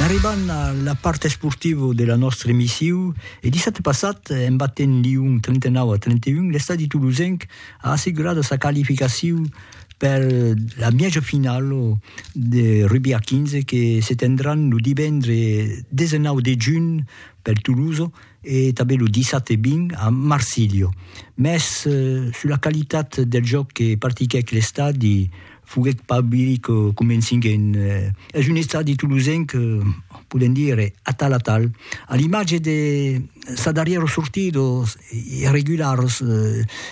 N'arribam a la part esportiva de la nòstra emissiu e dissabte passat, en batent Lyon 39 a 31, l'estadi tolosenc a assegurada sa qualificaciu per la mièja finala de rugbi a 15 que se tendran lo divendre 19 de junh per Tolosa e tanben lo dissabte 20 a Marsilha. Mès sus la qualitat del jòc que partiquèc l'estadi, Foguèt pas Billy que comencing en. Es un estadi tolosenc, podem dire, atal atal, a l'imatge de sa darrièra sortida, irregularas,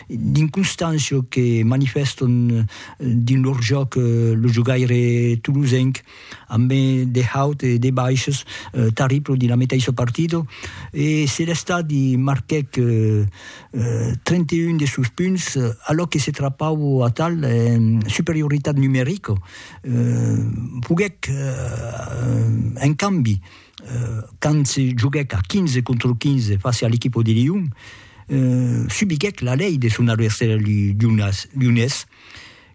d'inconstància que manifèstan dins lor jòc lo jogaire tolosenc. amb de haut e de baishs tarriblos dins la meteissa partida e se l'estadi marquèc 31 de sos punts alòc que se trapau atal en superioritat numerica, foguèc en cambi quand se joguèc a 15 contra 15 fàcia a l'equipa de Lion, subiguèc la lei de son adversari lionés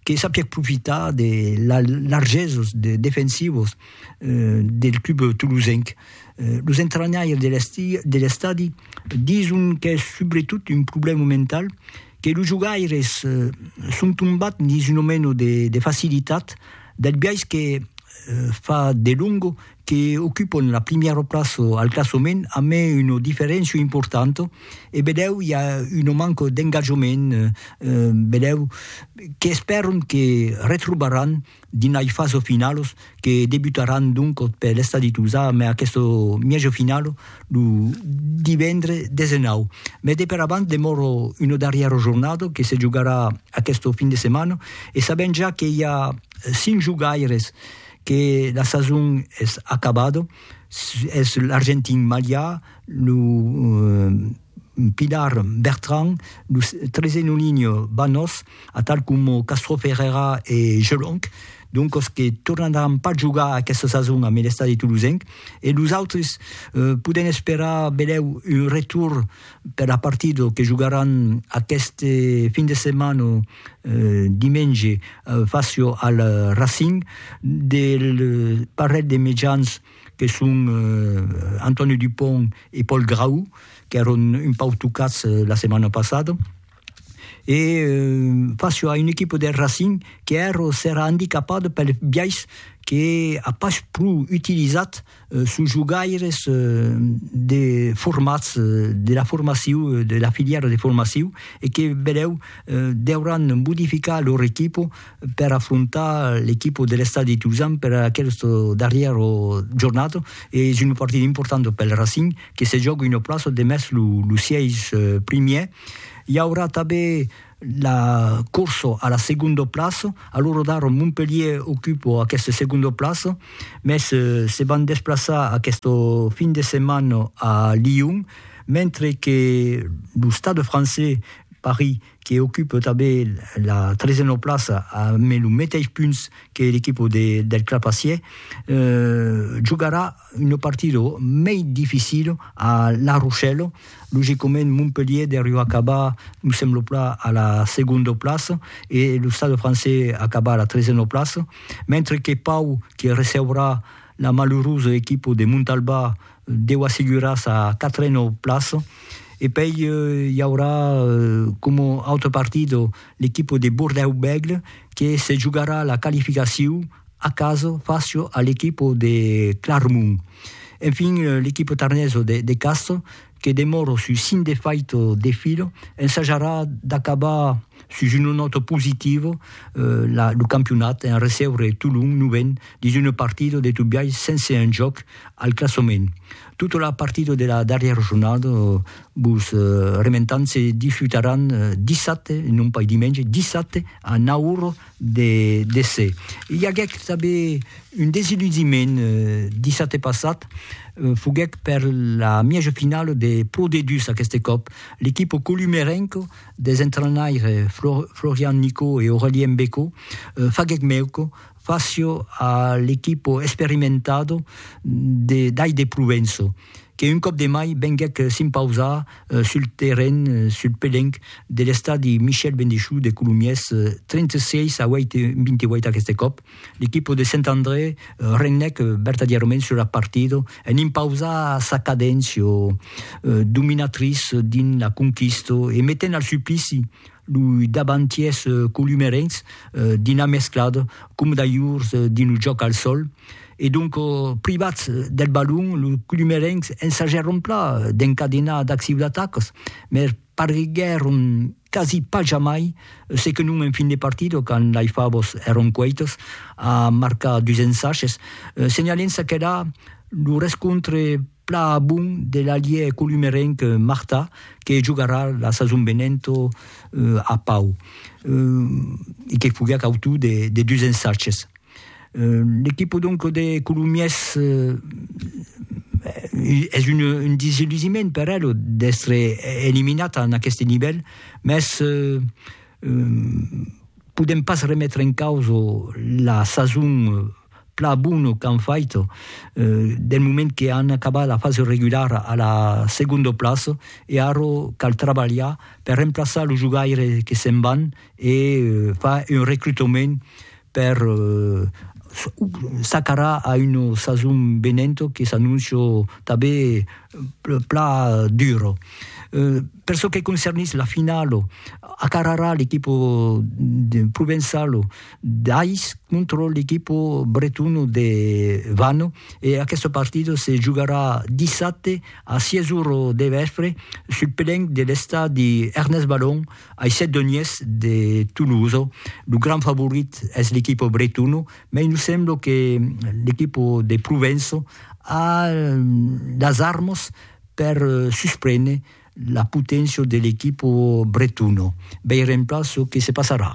que sapièc profitar de largesos defensivos del club tolosenc. Los entranhaires de l'estadi dison qu'es subretot un problèma mental, que los jogaires son tombats dins una mena de facilitat del biais que fa delongo que ocupon la primièra plaça al classament a mai una diferéncia importanta e bedèu i a una manca d'engatjament bedèu qu'espèron que retrobaràn dins lai fasa finala que debutaràn doncas per l'estadi Tolzà mai aquesta mièja finala lo divendre 19 mai de per avant demòra una darrièra jornada que se jogarà aquesta fin de setmana e sabèm ja que i a 5 jogaires que la sason es acabada, es l'argentin Malià, lo pilar Bertran, lo trezenolinho Banós, atal coma Castro Ferreira e Gelonc, doncas que tornaràn pas jogar aquesta sason ambe l'estadi tolosenc, e los autres podèm esperar benlèu un retorn per la partida que jogaràn aqueste fin de setmana dimenge facio al Racing del parelh de mejans que son Antonio Dupont e Paul Grau qu'èron un pauc tocats la setmana passada e facio a un equipa del Racing qu'èra andicapada pel biais que a pas pro utilizat Sos jogaires de formats de la formaciu de la filièra de formaciu e que benèu deuràn modificar lor equipo per afrontar l'equipo de l'Estadi Tuzan per aqueste darrièr jornat e es una partida importanta pel Racing que se jòga una plaça demest los sièis primièrs. I aurà tanben la corso a la segondo plaço, a lo rodar Montpellier ocupo aqueste segondo plaço, mès se van desplaçar aqueste fin de setmana a Lyon, mentre que lo Stade francés Paris que ocupe tanben la tresena plaça amb lo meteis punts que l'equipo del Clapacier, jogarà Un partido mei dificilo a La Rochelle, logicament Montpellier deriu acabar, me semblo plan, a la segonda plaça e lo Stade Français acabar a la tresena plaça, mentre que Pau que receurà la malurosa equipa de Montalbà deu assegurar sa quatrena plaça e pei i aurà coma autre partido l'equipa de Bordèu-Bègle que se jogarà la qualificacion A caso facio a l'equipo de Clarmont. Enfin l'equipo tarneso de de Castro, que demòro sus cinc de faito de filo, ensajarà d'acabar sus una nòta positivo la lo campionat en recebre Tolon novent dins una partida de tot biais sense enjòc al classament. Tota la partida de la darrièra jornada vos rementam se disputaràn dissabte, non pas dimenge, dissabte a nau ora de déser. I aguèc tanben un desiludiment dissabte passat, foguèc per la mièja finala de Pro D2 aqueste còp, l'equipa columerenca des entrainaires Florian Nicot e Aurelien Becco faguèc mèuca fàcia a l'equipa experimentada d'Ai de Provenço. que un còp de mai venguèc s'impausar sul terren, sul pelenc, de l'estadi Michel Bendechoux de Colomiers, 36 a 8, 28 aqueste còp, l'equipa de Sent André regnèc vertadièrament sus la partida en impausar sa cadéncia dominatriça dins la conquista e metent al suplici loi davantièrs columerencs dins la mesclada, coma d'alhurs dins lo jòc al sòl, E donc, privats deth balon, los colomerencs ensagèron plan d'encadenar d'ath ciudatacos, mès parguèron quasi pas jamai se que non en fin de partida, quand lei favos èron cueitos, a marcar dus ensages, senhalent çaque era lo rescontre plan a bon de l'alièr colomerenc Martà, que jogarà la sason venenta a Pau, e que foguèc autor de dus ensages. L'equipo donc de Colomiers es un desillusiment per el d'estre eliminat en aqueste nivèl, mès podèm pas remetre en causa la sason plan bona qu'an fait del moment que an acabat la fasa regulara a la segonda plaça e ara cal trabalhar per remplaçar los jogaires que se'n van e far un recrutament per s'acarar a una sason venenta que s'anóncia tanben plan dura. Per çò que concernís la finala, acararà l'equipa provençala d'Ais contra l'equipa bretona de Vannes e aquesta partida se jogarà dissabte a sièis ora de vèspre sul pelenc de l'estadi Ernest Balon Aissèt Donies de Tolosa, lo grand favorit es l'equipo Bretono, mai nos sembla que l'equipo de Provença a las armas per susprene la poténcia de l'equipo Bretono. Veirem plan çò que se passarà.